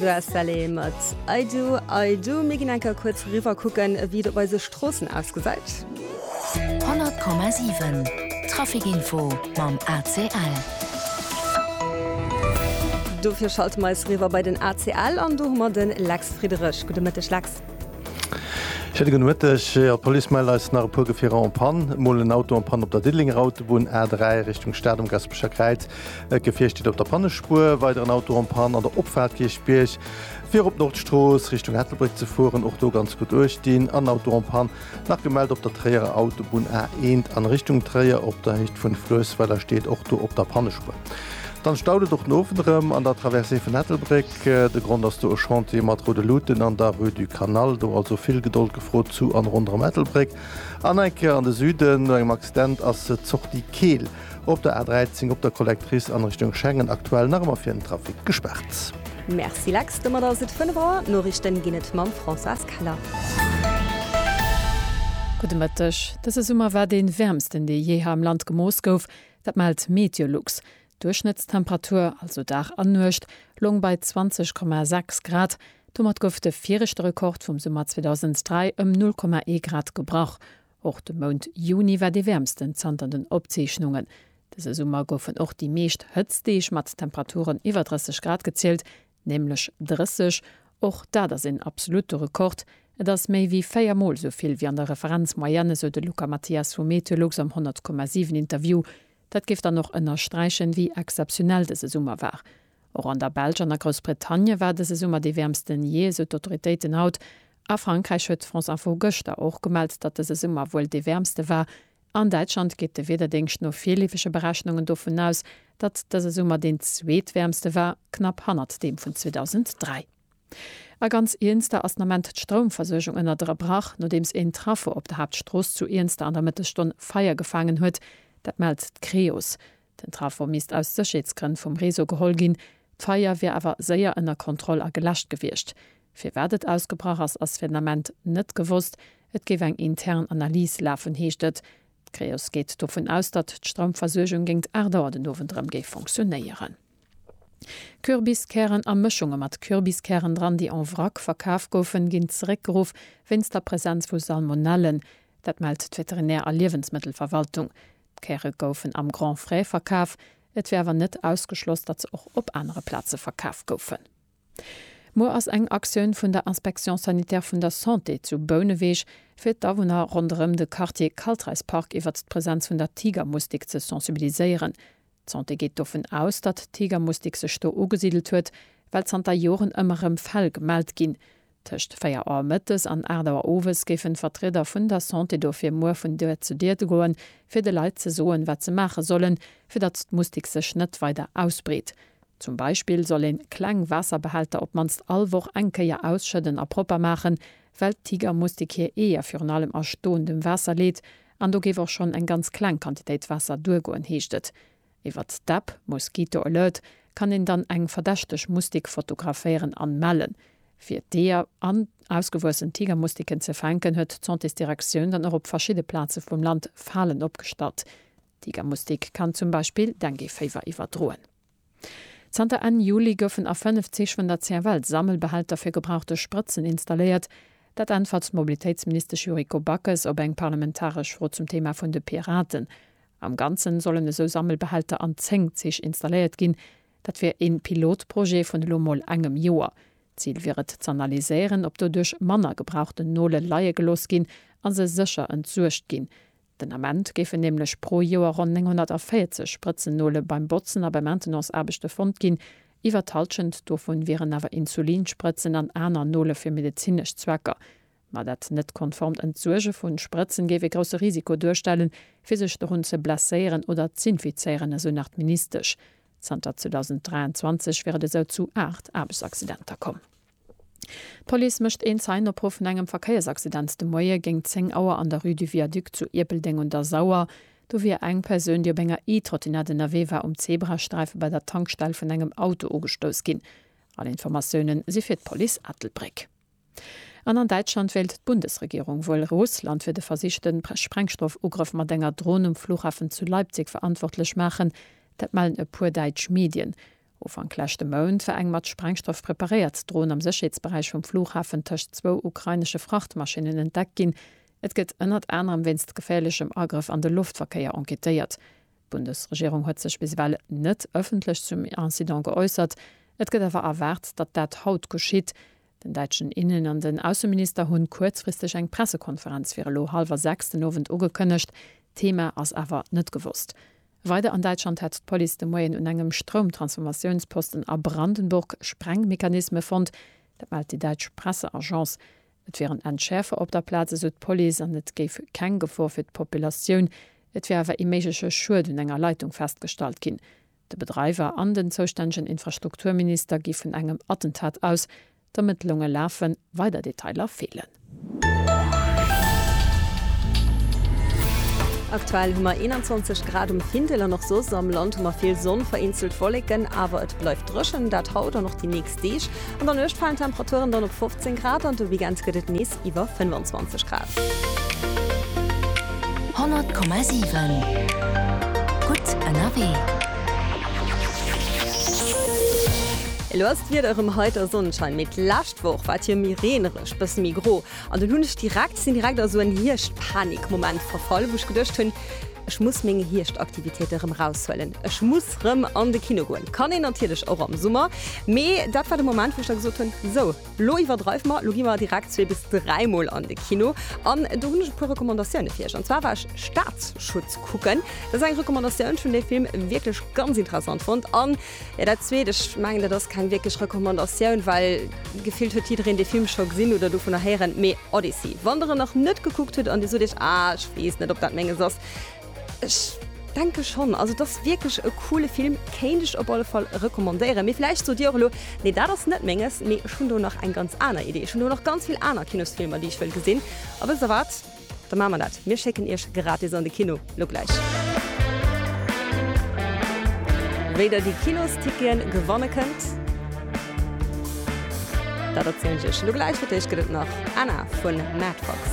Grass Valley mat I do, I do. Mir ginn eng Kéier kuerz riwwer kucken, wéi et op eise Stroossen ausgesäit. 100,7 Traficinfo mam ACL. Dofir schalte mer eis riwwer bei den ACL an do hu mer de Lex Friederich. Gudde Mëtteg Lex. Schéine gudde Mëtteg. Jo, d'Police mellt eis nach e puer Gefierer en panne. Mol en Auto en panne op der Diddelenger Autobunn, A3, Richtung Stad um Gaspecher Kräiz. D'Gefier steet op der Pannespuer, weider en Auto en Panne an der Opfaart Kierchbierg, fir op d'Nordstrooss Richtung Ettelbréck ze fueren, och do ganz gutt Uecht dinn. An Auto en Panne nach gemellt op der Tréierer Autobunn A 1 an Richtung Tréier op der Héicht vun Fluessweiler, steet och do op der Pannespuer. Dann staut et och den Owend erëm an der Traversée vun Ettelbréck. De Grond ass do e Chantier mat Rue de Lutten an der Rue du Canal, do also vill Gedold gefrot zu an ronderëm Ettelbréck. An eng Kéier an de Süden, no engem Accident ass d'Sortie Keel. Op der A13 op der Collectrice an Richtung Schengen aktuell nach emmer fir den Trafic gespaart. Merci Lex, domat ass et 5 Auer. D'Noriichten ginn et mam Françoise Keller. Gudde Mëtteg. Dëse Summer war dee wäermsten, dee jeeher am Land gemooss gouf. Dat mellt Meteolux. D'Duerchschnëttstemperatur, also Dag an Nuecht, loung bei 20,6 Grad. Domat gouf de viregte Rekord vum Summer 2003 ëm 0,1 Grad gebrach. Och de Mount Juni war dee wäermsten zanter den Opzeechnungen dëse Summer. Goufen och déi meescht Hëtztdeeg mat Temperaturen iwwer 30 Grad gezielt, nämlech 30. Och dat ass een absolutte Rekord. Et ass méi wéi véier Mol esou vill wéi an der Referenzmoyenne, esou de Luca Mathias vu Meteolux am 100,7 Interview. Dat géif dann och ënnersträichen, wéi exzeptionell dëse Summer war. Och an der Belsch an a Groussbritannie war dëse Summer dee wäermsten jee, esou d'Autoritéiten haut. A Frankräich huet France Info gëschter och gemellt, datt dëse Summer wuel dee wäermste war. An Däitschland geet de Wiederdéngscht no virleefege Berechnungen dovun aus, datt dëse Summer deen zweetwäermste war, knapp hannert deem vun 2003. A ganz Iernster ass den Ament d'Stroumversuergung ënnerderebrach, nodeems een Traffo op der Haaptstrooss zu Iernster an der Mëttesstonn Feier gefaangen huet. Dat mellt d'Creos. Den Trafo misst aus Sécherheetsgrënn vum Réseau geholl ginn. D'Feier wier awer séier ënner Kontroll a geläscht gewiescht. Firwat et ausgebrach ass, ass fir den Ament net gewosst. Et géif eng intern Analys lafen, heescht et. D'Creos geet dovun aus, datt d'Stroumversuergung géint 8 Auer den Owend erëm géif funktionéieren. Kürbiskären a Mëschunge mat Kürbiskären dran, déi en vrac verkaf goufen, ginn zeréckgeruff wéinst der Presenz vu Salmonellen. Dat mellt d'Veterinär a Liewensmëttelverwaltung. D'Käre goufen am Grand Frais verkaf, et wier awer net ausgeschloss, datt se och op anere Plaze verkaf goufen. Muer ass eng Aktioun vun der Inspection sanitaire vun der Santé zu Bouneweg, fir d'Awunner ronderëm de Quartier Kaltreispark iwwert d'Presenz vun der Tigermustik ze sensibiliséieren. D'Santé geet dovun aus, datt d'Tigermustik sech do ugesidelt huet, well zanter Joren ëmmer erëm Fäll gemellt ginn, Tëscht 4 Auer mëttes an 8 Auer owes géifen d'Vertrieder vun der Santé dofir muer vun Dier zu Dier goen, fir de Leit ze soen, wat se maache sollen, fir datt d'Mustik sech net weider ausbreet. Zum Beispill soll ee kleng Waasserbehälter op d'mannst all Woch eng Kéier ausschëdden a propper maachen, well d'Tigermustik hir Eeër virun allem a stoendem Waasser leet an do géif och schonn eng ganz kleng Quantitéit Waasser duergoen, heescht et. Iwwert d'App Mosquito Alert kann een dann eng verdächteg Mustik fotograféieren an mellen. Fir d'Eeër an ausgewuessen Tigermustiken ze fänken, huet d'Santésdirektioun dann och op verschidde Plaze vum Land Falen opgestallt. D'Tigermustik kann zum Beispill Dengueféiwer iwwerdroen. Zanter Enn Juli goufen a fënnef Zich vun der CFL Sammelbehälter fir gebrauchte Sprëtzen installéiert. Dat äntwert d'Mobilitéitsministesch Yuriko Backes op eng parlamentaresch Fro zum Thema vun de Piraten. Am Ganzen sollen esou Sammelbehälter an 10 Zich installéiert ginn. Dat wier ee Pilotprojet vun elo mol engem Joer. D'Zil wier et z'analyséieren, ob doduerch manner gebrauchten Nole leie gelooss ginn a se sécher entsuergt ginn. Den Ament géifen nämlech pro Joer ronn 940 Sprëtzennole beim Botzen a bei Maintenanceaarbechte fonnt ginn. Iwwer d'Hallschent dovun wieren awer Insulinsprëtzen an aner Nole fir medezinesch Zwecker. Ma dat net konformt Entsuerge vu Sprëtzen géif ee grousse Risiko duerstellen, fir sech dorun ze blesséieren oder z'infizéieren, esou nach d'Ministesch. Zanter 2023 wier et esou zu 8 Aarbechtsaccidenter komm. D'Police mécht een Zeienopruff vun engem Verkéiersaccident de Moie géint 10 Auer an der Rue du Viaduc zu Ierpeldeng un der Sauer. Do wier eng Persoun, déi op enger E-Trottinette ënnerwee war, um Zebrasträife bei der Tankstell vun engem Auto ugestouss ginn. All Informatiounen si fir d'Police Ettelbréck. An an Däitschland wéilt d'Bundesregierung wuel Russland fir de versichte Sprengstoff-Ugrëff mat enger Dron um Fluchhafen zu Leipzig verantwortlech maachen. Dat mellen e puer däitsch Medien. Ufank leschte Mount war eng mat Sprengstoff preparéiert Dron am Sécherheetsberäich vum Fluchhafen tëscht zwou ukrainesche Frachtmaschinnen entdeckt ginn. Et gëtt ënnert anerem wéinst geféierlechem Agrëff an de Loftverkéier enquêtéiert. D'Bundesregierung huet sech bis ewell net ëffentlech zum Incident geäussert. Et gëtt awer erwaart, datt dat haut geschitt. Den däitschen Innen an den Ausseminister hunn kuerzfristeg eng Pressekonferenz fir elo hallwer 6 den Owend ugekënnegt. D'Thema ass awer net gewosst. Weider an Däitschland hätt d'Police de Moien un engem Stroumtransformatiounsposten a Brandenburg Sprengmechanisme fonnt. Dat mellt déi däitsch Presseagence. Et wieren Entschäerfer op der Plaz, esou d'Police, an et géif keng Gefor fir d'Populatioun. Et wier awer ee méigleche Schued un enger Leitung festgestallt ginn. De Bedreiwer an den zoustännegen Infrastrukturminister gi vun engem Attentat aus. D'Ermëttlunge lafen, weider Detailer feelen. Aktuell hu mer 21 Grad um Findel an och soss am Land hu mer vill Sonn, vereenzelt Wolleken, awer et bleift dréchen, dat haut an och déi nächst. Deeg. An der Nuecht falen d'Temperaturen dann op 15 Grad an de Weekend gëtt et nees iwwer 25 Grad. 100,7 Gutt ënnerwee. Elo ass d'Wieder erëm heiter Sonnenschein, mee d'lescht Woch war et jo méi reenereg, bësse méi gro. An dann hunn ech direkt, sinn direkt a sou en Hierscht-Panik-Moment verfall, wou ech geduecht hunn, Ech muss meng Hierscht-Aktivitéite rëm eraushuelen. Ech muss rëm an de Kino goen. Kann een natierlech och am Summer. Mee dat war de Moment, wou ech da gesot hunn, Sou, lo iwwerdreiwe mer, lo gi mer direkt zwee bis dräi Mol an de Kino. An do hunn ech e puer Recommandatioune fir iech. An zwar war ech Staatsschutz kucken. Dat ass eng Recommandatioun. Ech hunn dee Film wierklech ganz interessant fonnt. An Jo, dat zweet, ech mengen, dat ass keng wierklech Recommandatioun, well gefillt huet jiddereen dee Film scho gesinn oder dovunner héieren. Mee Odyssey, wann der en nach net gekuckt hutt an dir sot iech, ah, ech weess net, ob dat menges ass, ech denke schonn. Also, et ass wierklech e coole Film, kéint ech op alle Fall recommandéieren. Mee vläicht sot dir och elo, nee, dat ass net menges, mee ech hunn do nach eng ganz aner Idee, ech hunn do nach ganz vill aner Kinosfilmer, déi ech wëll gesinn. A wësst der wat? Da maache mer dat, mir schécken iech gratis an de Kino. Lo gläich. Wéi der déi Kinosticketen gewanne kënnt, dat erzielen ech iech lo gläich. Fir d'éischt gëtt et nach Anna vun Mad Fox.